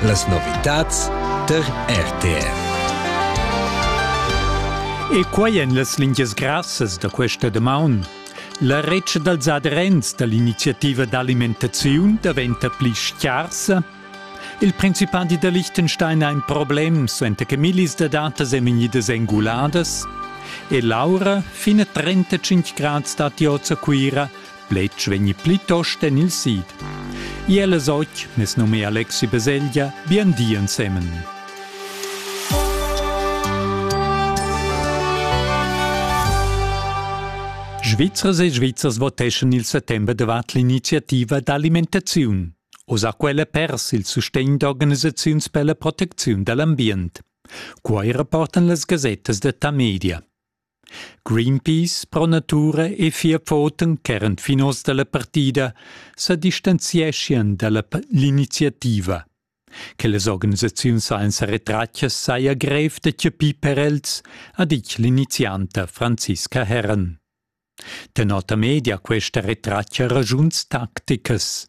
Las novitads tar RTR. E quai en las lingias grassas da questa damaun. La retscha dals aderents da l'iniziativa d'alimentaziun daventa pli scarsa. Il principadi da Liechtenstein ha in problem, suenter che millis da datas èn vegnidas enguladas. E Laura, fina 35 grads datti oz a Cuira, Bletsch vegni plitost en il sid. Iela soc, nes nome Alexi Beseglia, bien di ensemen. Svizzers e Svizzers voteschan il settembre davart l'iniziativa d'alimentaziun. Osa quella pers il sustegn d'organisaziuns per la protecziun dall'ambient. Quai rapportan las gasettas de Tamedia. Greenpeace pro natura e fia foten ch'eran finos dalla partida sa distanzieschien dalla l'iniziativa. Che las organisaziuns sainza retratgas saja grev da chapir per els, ha ditg l'inizianta Franziska Herren. Tenota media questa retratga ragiuns tacticas.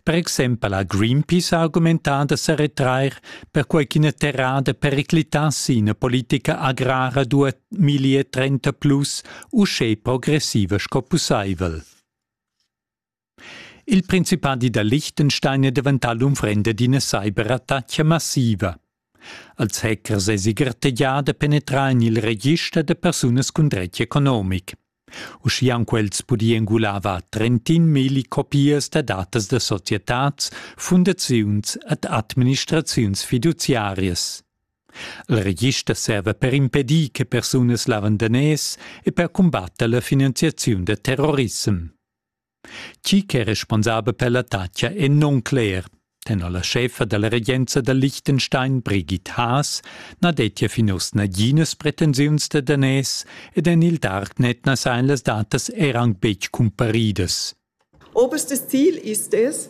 Per exempel ha Greenpeace argumentà da sa retrair perquai ch'ina terrada periclitass ina politica agrara 2030 plus uschè progressiva sco pussaivel. Il principadi da Liechtenstein è daventà l'unfrenda d'ina cyberattacca massiva. Als hackers èsi gartegià da penetrar en il register da persunas cun dretg economic. Uschia han quels pudì engular var 31.000 copias da datas da societads, fundaziuns ed administraziuns fiduziarias. Il register serva per impedir che persunas lavandanès e per cumbatter la finanziaziun da terrorissem. Chi ch'è responsabel per l'attacca è non cler. Tenor la scheffa dalla regenza da Liechtenstein Brigitte Haas na dettia fin uss naginas pretensiuns da daners ed en il Darknet na sajan las datas er anc betg cumparidas. Oberstes Ziel ist es,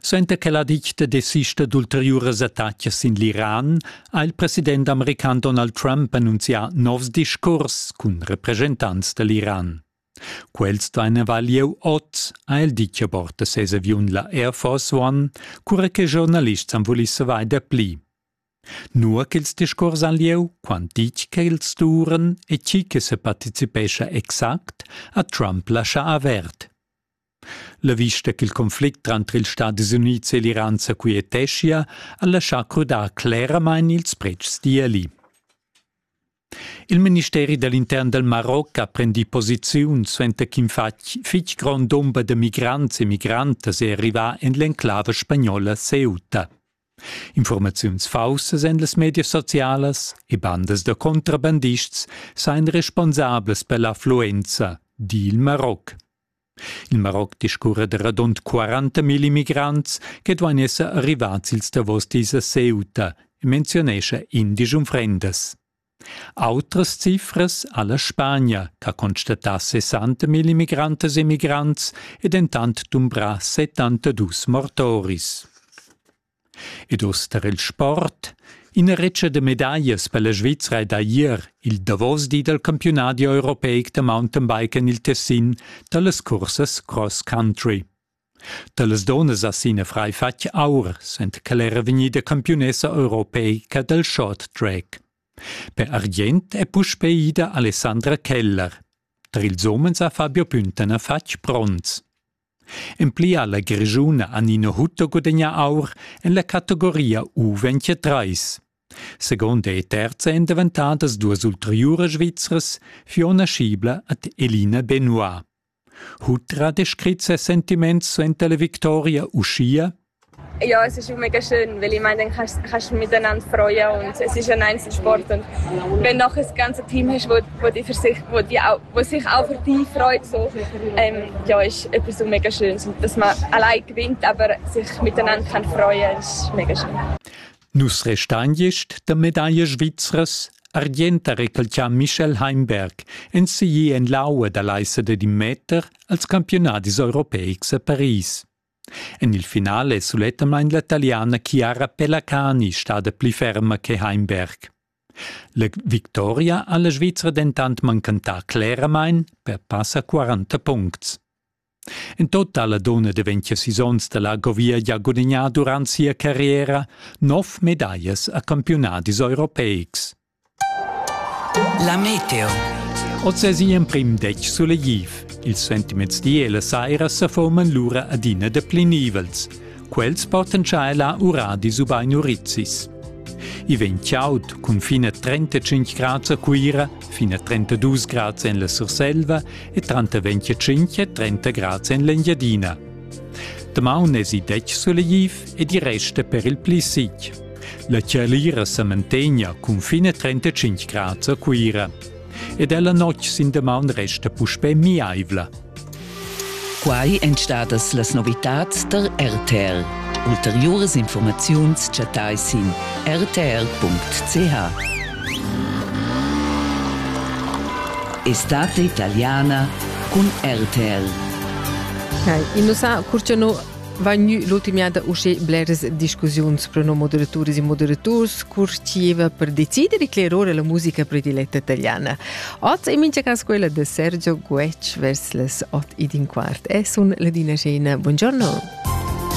Suenter che la dicta desista d'ulteriuras attacas sin l'Iran ha il president american Donald Trump annunzià novs discurs cun represchentants da l'Iran. Quels duaina lieu oz, ha el ditg a bord da ses aviun la Air Force One, cura che giornalists han vulì savair dapli. Nua ch'ils discurs han lieu, quant ditg che els duran e tgi che separticipescha exact, ha Trump laschà avert. La vista ch'il conflict tranter ils Stadis Unids e l'Iran sa quieteschia ha laschà crudar cleramain ils pretschs d'ieli. Il ministeri da l'intern dal Maroc ha prendì posiziun suenter ch'in fitg grond dumber da migrants e migrantas è arrivà en l'enclava spagnola Ceuta. Informaziuns faussas en las medias socialas e bandas da contrabandists sajan responsablas per l'affluenza, di il Maroc. Il Maroc discurra da radund 40.000 immigrants che duain esser arrivads ils davos dis a Ceuta, menziunescha indisch unfrendas. Autras cifras ha la Spagna, che constatà 60.000 immigrantas e migrants e dentant dumbrà 72 mortoris. Ed uss tar il sport. Ina retscha da medaglias per la Svizra è da ier il davos di dal campiunadi europeic da mountainbike en il Tessin da las cursas cross country. Da las dunnas ha Sina Frei fatg aur, sent ch'ella era vegnida campiunessa europeica dal short track. Per argient è puspè ida Alessandra Keller. Tar ils umens ha Fabio Pünten fatg bronz. En pli ha la Grischun Annina Hutto gudagnà aur en la categoria U23. Seconda e terza èn daventadas duas ulteriuras Svizras, Fiona Schiebler ed Elina Benoit. Hutter ha descrit ses sentiments suenter la victoria uschia Jo, es schi mega schön, weil ich mein, dann hast, hast du miteinander Freude und es ist ein Einzelsport und wenn noch ein ganzes Team hast, wo, wo, die, für sich, wo, die auch, wo sich auch für dich freut, so, ähm, ja, ist etwas so mega Schönes, dass man allein gewinnt, aber sich miteinander kann freuen, ist mega schön. Nus restagist der Medaille Schweizers Argenta recalcià Michel Heimberg enseguì en l'aua da l'aissada di meter als campionadis europeics a Paris. En il final è sulettamain la Taliana Chiara Pellacani stada pli ferma che Heimberg. La victoria ha la Svizra dentant manchentà cleramain per passa 40 puncts. En total la donna de 20 sisons da la Govia ha gudagnà durant sia carriera nov medaglias a campiunadis europeics. La meteo. Oz es in emprim detg sulegliv. Ils sentiments di e la saira sa forman lura adina da pli nivels. Quels portan cha ella uradis ubain urizis. I vegn chaud cun fin a 35 grads a Cuira, fin a 32 grads en la Surselva e tranter 25 e 30 grads en l'Engiadina. Damaun es i detg sulegliv ed i resta per il pli sic. La tschalira sa mantegna cun fin a 35 grads a Cuira. Ed ella notg sin damaun resta puspè miaivla. Quai èn stadas las novitads da RTL. Ulteriuras informaziuns chattai sin rtl.ch. Estate italiana cun RTL. Nei, innu sa curciano Vegni l'ultimada uschè bleras discussiuns pro no moderaturas e moderaturs curcieva per decider e clear ora la musica prediletta italiana. Oz è mincha cas quella de Sergio Guetsch vers les 8 ed in quart. E sun Ladina Scena. Buongiorno.